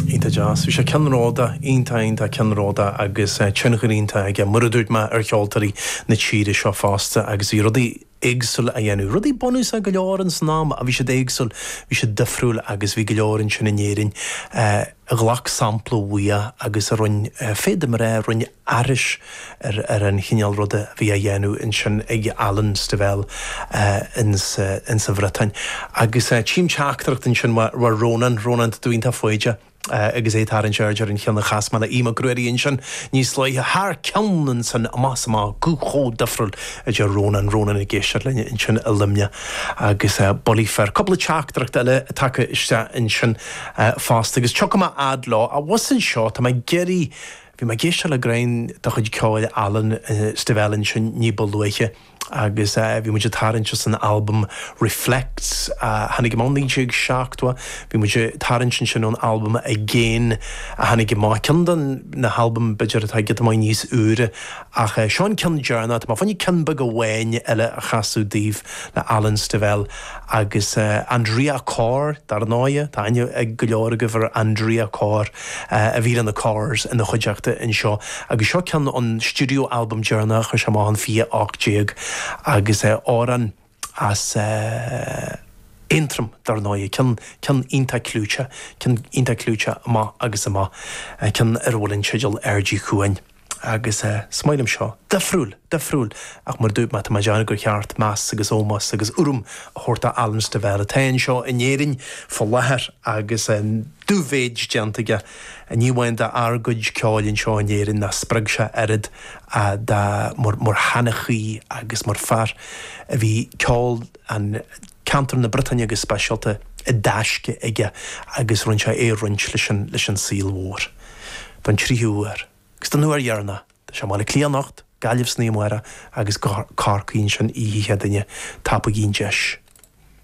Iontach deas. Bhí sé ceannróda, iontach iontach ceannróda agus tionchar iontach aige, mar a dúirt mé, ar cheoltóirí na tíre seo fosta agus bhí rudaí éagsúla á dhéanamh. Rudaí bunúsacha go leor in san am ach bhí siad éagsúil, bhí siad difriúil agus bhí go leor ansin in Éirinn a ghlac sampla uaidh agus a rinne, féadfaidh mé a rá, a rinne. aithris ar an chineál ruda a bhí á dhéanamh ansin ag Alan Stivell sa Bhriotáin. Agus tchím teachtaireacht ansin ó Rónán, Rónán de Búítá Faoide, agus é ag tarraingt aird ar an cheann a chas mé le Aodh Mac Ruairí ansin níos luaithe, thar cionn ansan, amach 's amach, guth chomh difriúil, a deir Rónán, Rónán ag éisteacht linn ansin i Luimneach agus bulaí fir. Cúpla teachtaireacht eile tagtha isteach ansin fosta, agus tiocfaidh mé fhad leo. Abhus anseo, tá mé ag iarraidh. Bhí mé ag éisteacht le gné de chuid ceoil Alan Stivell ansin ní ba luaithe agus bhí muid ag tarraingt as an albam Reflets a tháinig amach 1970. Bhí muid ag tarraingt ansin ón albam Again a tháinig amach, ceann de na halbaim b'fhéidir atá giota maith níos úire ach seo an ceann deireanach. Tá mé fá choinne ceann beag amháin eile a chasadh daoibh le Alan Stivell agus Andrea Corr, dar ndóighe, tá aithne ag go leor agaibh ar Andrea Corr. a bhí leis na Corrs ina chuideachta anseo agus seo ceann ón studio album deireanach a chuir sé amach in 2018 agus amhrán as Aontroim dar ndóigh, ceann, ceann iontach clúiteach, ceann iontach clúiteach amach agus amach, ceann ar a bhfuil an teideal Aird Uí Chuain. agus is maith liom seo, difriúil, difriúil, ach mar a dúirt mé, tá mé ag déanamh gur cheart meas agus ómós agus urraim a thabhairt do Alan Stivell, atá anseo in Éirinn faoi láthair agus an dubh-mhéid déanta aige, ní amháin d'ár gcuid ceoil anseo in Éirinn, nach spreag sé oiread ach mar sheanchaí agus mar fear a bhí ceol an. ceantar na Briotáine go speisialta, i dtaisce aige agus rinne sé é a roinnt leis an saol mhór. Don tríú huair, agus don uair dheireanach, tá sé i mBaile Átha Cliath anocht, Gaillimh san oíche amárach agus Corcaigh ansin oíche Chéadaoine. Tapaigí an deis!